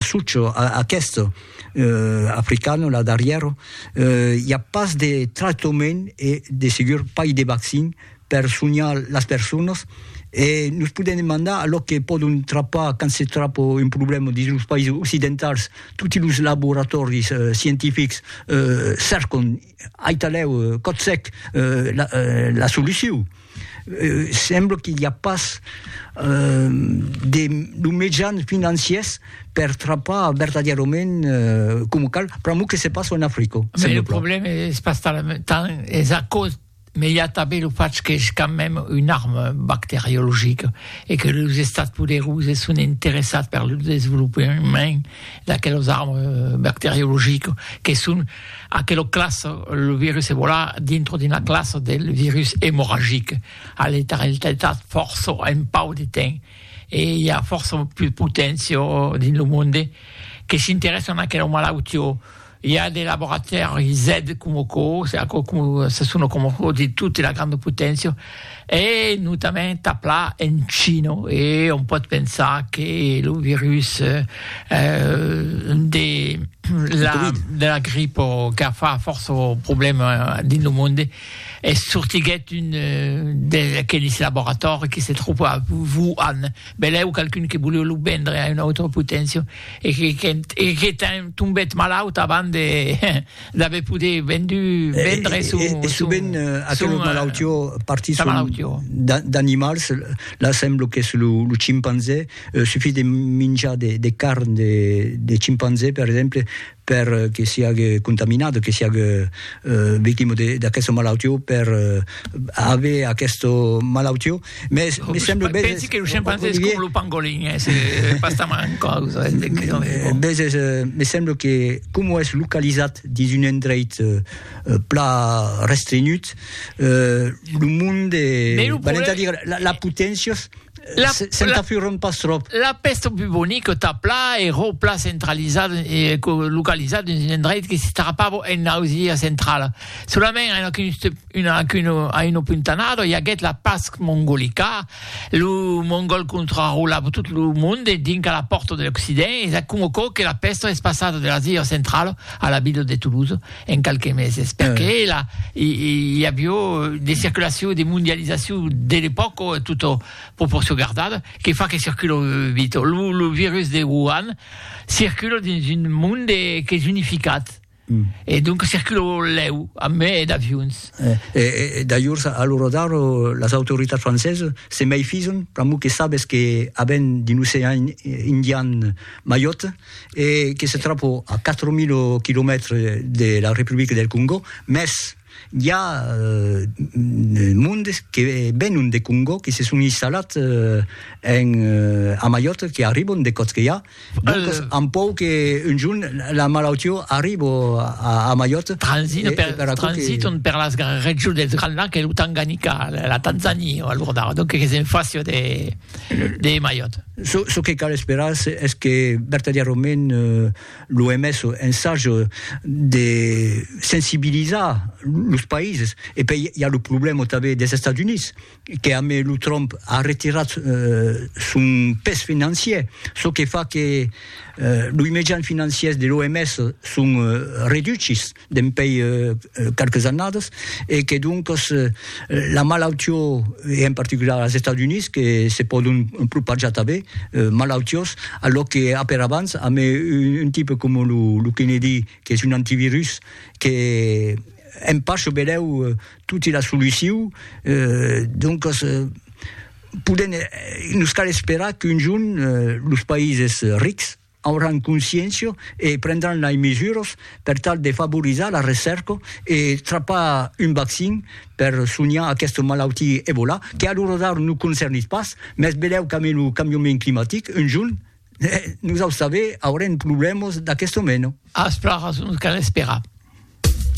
Sucho, aqueste africano la darrièro, i a pas de tractament e de segur pas de vaccin per sonhar las personas e nos podèm demandar a lo que pòdon trapar quand se trapa un problèma dins los païses occidentals, toti los laboratòris scientifics cercan Aitalèu, Cotsèc, la solucion, sembla que i a pas de lo mejan financiers per trapar vertadièrament coma cal, pr'amor que se passa en Africa. Lo problèma es pas tant es a caus Mais i a tanben lo fach qu'es quand même un arme bacteriologique e que los estats poderós es son interessats per lo desvolopament d'aquelos armes bacteriologiques que son aquelo class lo virus Ebola dintro d'una classa del virus emorragic a letaralitat fòrça en pauc de temps e i a fòrça plus potencia dins lo monde que s'interessan a aquelo malautió I a de laboratèri zèd coma aquò, aquò coma se sona coma aquò de tota la granda poténcia, e notament aplà en China, e òm pòt pensar que lo virus de la de la gripa qu'a fa fòrça problèma dins lo monde es sortiguèt d'un d'aqueles laboratòris que se tròba a Wuhan. Belèu qualqu'un que voleu lo vendre a una autra poténcia e que qu'ènt e que qu'ènt tombèt malaut avant de d'aver poder vendu vendre son son e sovent aquelos malautió partisson d'animals la semblo qu'es lo lo chimpanzé suffís de minjar de de carn de de chimpanzé per exemple per que siague contaminat, que siague victima d'aquesta malautió, per aver aquesta malautió. Mès me semble bèth... Pensi que lo scimpanzé es coma lo pangolin, es pas tan en causa. Bèth es, me semble que coma es localizat dins un endreit pla restrenhut, lo monde, valent a dire, las potencias, Se'n tafuron pas tròp. La pèsta bubonica tà pla ero pla centralizada localizada dins un endreit que s'estrapava en Ausilia centrala. Solament a una puntanada i aguèt la past mongolica. Lo mongòl contrarolava tot lo monde dinc a la pòrta de l'Occident e s'acomocò que la pèsta es passada de l'Asia centrala a la vila de Toulouse en qualques meses, perque eh. la, i, i avió de circulacion, de mondializacion de l'epòca, tot proporcion gardada, que fa que circula vito. Lo, lo virus de Wuhan circula dins un monde qu'es unificat, Mm. E donc circula lèu, a me e d'avions. Eh, e, e, d'ailleurs, a lo rodar, las autoritats francesas se meifison, pr'amor que sabes que aven d'un ocean indian maiot, e que se tròpo a 4.000 quilomètres de la Republica del Congò, mès i a mondes que venon de Congò, que se son instalats en a Maiòrca, que arribon de Còtzqueià, doncas an pòur que un jorn la malautió arribo a Maiòrca. Transitan per, transitan per las regions dels Grands Lacs e lo Tanganica, la Tanzania, alordar, donc que s'en fassia de de Maiot. Çò que cal esperar es que vertadièrament l'OMS ensage de sensibilizar los païses. E pei i a lo problèma tanben des Estats Units, que a mai lo Trump a retirat son pes financier, çò que fa que loi mejan financiers de l'OMS son reduchis. dempèi qualques annadas e que doncas la malautió e en particular als Estats Units que se pòdon propajar tanben malautiós a lo que aper abans amb un tipe coma lo Kennedy qu'es un antivirus que en pas çò belèu toti la solucion doncas podèm nos cal esperar qu'un jorn los païses rics auràn consciéncia e prendràn lei mesuras per tal de favorizar la recèrca e trapar un vaccin per sonhar aquesta malautia Ebola, que a l'ora d'ara nos concernís pas, mès velèu qu'ambe lo cambiament climatic, un jorn, nosaus tanben aurem problèmas d'aquesta mena. Aspra, nos cal esperar.